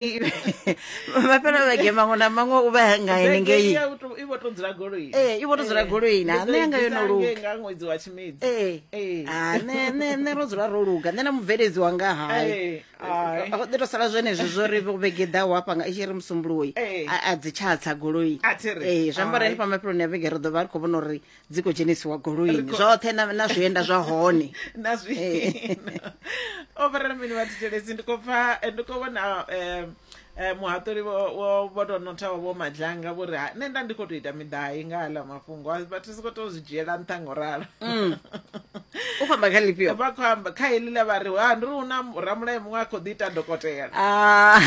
mafhelo vhege maṅwe na maṅwe u vha nga henengei i vho to dzula goloi ee i vho to dzula goloi na nṋe yanga yo no luga nga ṅwedzi wa tshimedzi ee ha nṋe nṋe nṋe ro dzula ro luga nṋe na mubveledzi wanga hai ḓi to sala zwenezwi zwo ri vhege ḓaho hafha nga i tshi ri musumbuluwoyi a dzi tshatsa goloi ee zwi amba uri henefha mafheloni a vhege ri ḓo vha ri khou vhona uri dzi khou dzhenisiwa goloini zwoṱhe na zwienda zwa hone na zwienda o vharela mini vha thetshelesi ndi khou pfa ndi khou vhona um um muhaṱuli vho tou nothaho vho madzhanga vho ri ha nṋe nda ndi khou tou ita miḓai nga aḽa mafhungo vhathu si khou tou zwi dzhiela nṱha ngo ralo mm. u khou amba kha lifhio vha khou amba kha heḽi ḽa vha ri ha ndi ri hu na ramulayo muṅwe a khou ḓi ita dokotela ah.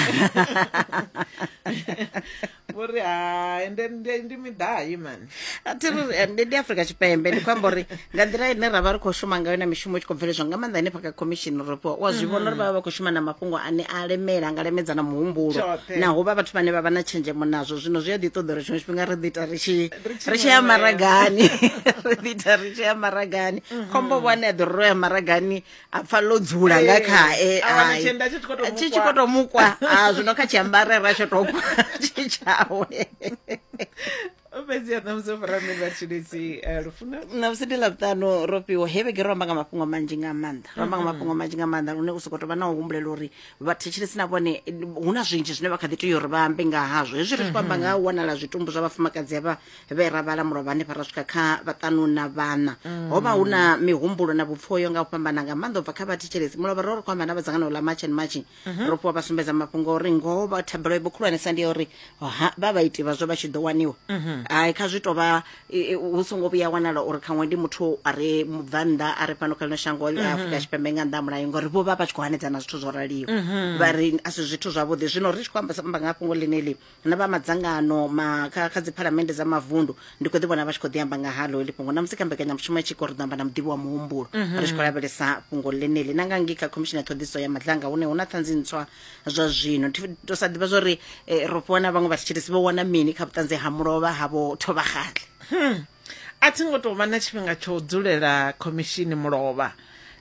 vho ri hai ndi midai mani a thi ri eh, ndi afrika tshipembe ndi khou amba uri nga nḓila ine ra vha ri khou shuma ngayo na mishumo i tshi khou bveledzwa nga maanḓa henefha kha commission ropo wa zwi vhona uri vha vha vha khou shuma na mafhungo ane a lemela nga lemedza na muhumbulo Tshoṱhe. naho vha vhathu vhane vha vha na tshenzhemo nazwo zwino zwi a ḓi ṱoḓa uri tshiṅwe tshifhinga ri ḓi ita ri tshi Ri tshi ri tshi ya ṅweṅwea. maragani ri ḓi ita ri tshi ya maragani khombo vho ane a ḓo ri ro ya maragani a pfa ḽo dzula nga Eh, khae a wana hai. tshienda tshi tshi khou tou Tshi tshi mukwa. khou tou mukwa Ah, zwino kha tshiambarera tsho tou kwa tshi tshawe fhedzi a ṋamusi o fara mini vhatshilisi eh, lufuna na musi ndi ḽavhuṱanu ro fhiwa he vhege ro amba nga mafhungo manzhi nga maanḓa ro amba nga mafhungo manzhi nga maanḓa lune u sokou tou vha na u humbulela uri vhathetshelesi na vhone eh, hu na zwinzhi zwine vha kha ḓi tea uri vha ambe nga hazwo hezwi ri tshi khou amba nga ha u wanala zwitumbu zwa vhafumakadzi havha vhe ra vhala mulovha hanefha ra swika kha vhaṱanu na vhana mm. ho vha hu na mihumbulo na vhupfoyo nga u fhambana nga maanḓa u bva kha vhathetshelesi mulovha ro ri khou amba na vhadzangano ḽa march and marching mhm. ro fhiwa vha sumbedza mafhungo uri ngoho vha thabelo ibo khulwanesa ndi ya uri vha vha iti vhazwo vha tshi ḓo waniwa mhm. hai kha zwi tou vha hu songo vhuya wanala uri khaṅwe ndi muthu a re mubvannḓa a re fhano kha ḽino shango a mhm. afurika tshipembe nga nnḓa mulayo ngori vho vha vha tshi khou hanedzana zwithu zwo raliho vha ri a si zwithu zwavhuḓi zwino ri tshi khou amba nga fhungo ḽine ḽi na vha madzangano ma kha, kha dziphalamende dza mavundu ndi khou ḓi vhona vha tshi khou ḓi amba nga halo heḽi fhungo na musi kha mbekanyamushumo ya tshiko ri ḓo amba na muḓivhi wa muhumbulo ri tshi khou lavhelesa fhungo ḽeneḽi na nga ngei kha khomishini ya ṱhoḓiso ya madlanga hune hu na ṱhanzi ntswa zwa zwino Thi- to sa ḓivha zwori eh, ro fhiwa na vhaṅwe vhatshitshilisi vho wana mini kha vhuṱanzi ha mulovha havho thovhagaḽi A thi ngo tou vha na tshifhinga tsha u dzulela khomishini mulovha,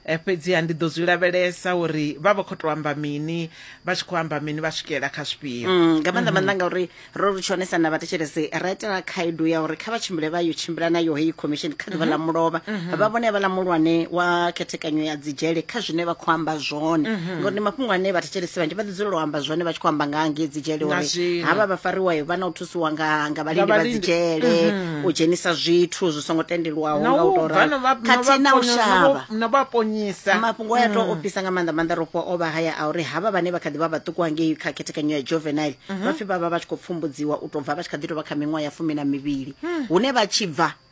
fhedziha ndi ḓo zwi lavhelesa uri vha vha khou tou amba mini, vha tshi khou amba mini, vha swikelela kha zwifhio. Mm, nga maanḓa maanḓa ngauri ro ri tshi onesa na vhathetshelesi ra itela khaedu ya uri kha vha tshimbile vha yo tshimbila nayo heyi khomishini kha ḓuvha ḽa mulovha vha vhone havhaḽa muhulwane wa khethekanyo ya dzidzhele kha zwine vha khou amba zwone ngauri ndi mafhungo ane vhathetshelesi vhanzhi vha ḓi dzulela u amba zwone vha tshi khou amba nga ha ngei dzidzhele Na uri zwino. havha vha fariwayo vha na u thusa ṱusiwa nga nga vhalindi vha dzi dzhele u dzhenisa zwithu zwi songo tendelwaho nga u tora khathihi na u shavha na vha ponyisa mafhungo a to ofisa nga maanḓa maanḓa ro fhiwa o vha haya a uri havha vhane vha kha ḓi vha vhaṱuku hangei kha khethekanyo ya juvenile vha pfi vha vha vha tshi khou pfumbudziwa u tou bva vha tshi kha ḓi tou vha kha miṅwaha ya fumi na mivhili hune vha tshi bva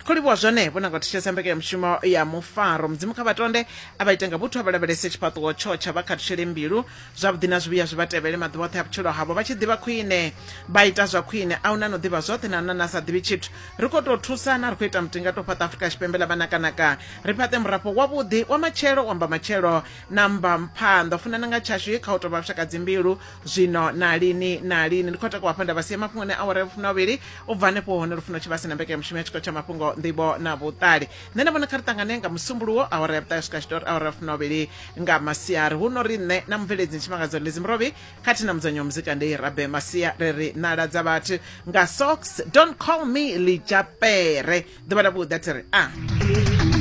Kho livhuwa zwone vho nanga u thetshelesa mbekanyamushumo ya mufaro. Mudzimu kha vha tonde a vha ite nga vhuthu a vha lavhelese tshifhaṱuwo tsho tsha vha khathutshele mbilu. Zwavhuḓi na zwivhuya zwi vha tevhele maḓuvha oṱhe a vhutshilo havho vha tshi ḓivha khwine vha ita zwa khwine. A hu na no ḓivha zwoṱhe na hu na na sa ḓivhi tshithu. Ri khou tou thusana, ri khou ita mutinga tou fhaṱa Afrika Tshipembe ḽa vhanakanaka. Ri fhaṱe murafho wavhuḓi wa matshelo wa mbamatshelo na mbamphanḓa. U funana nga tshashu kha hu tou vha vhushakadzimbilu zwino na lini na lini ndi khou takuwa hafha nda vha sia mafhungoni a awara ya vhufumi na vhuvhili u bva hanefho hone lufuno tshi vha si na mbekanyamushumo ya tshikolo tsha mafhungo nḓivho na vhuṱali nṋe na vhona kha ri ṱangane nga musumbuluwo awara ya vhuṱali swika tshitori awara ya vhufumi na vhuvhili nga masiari hu no ri nṋe na mubveledzi tshimangadzo ḽedzi murovhi khathihi na mudzanyi wa muzika ndei rabe masia ri ri nala dza vhathu nga sox don't call me lijapere ḓuvha ḽa vhuḓi a thi ri a ah.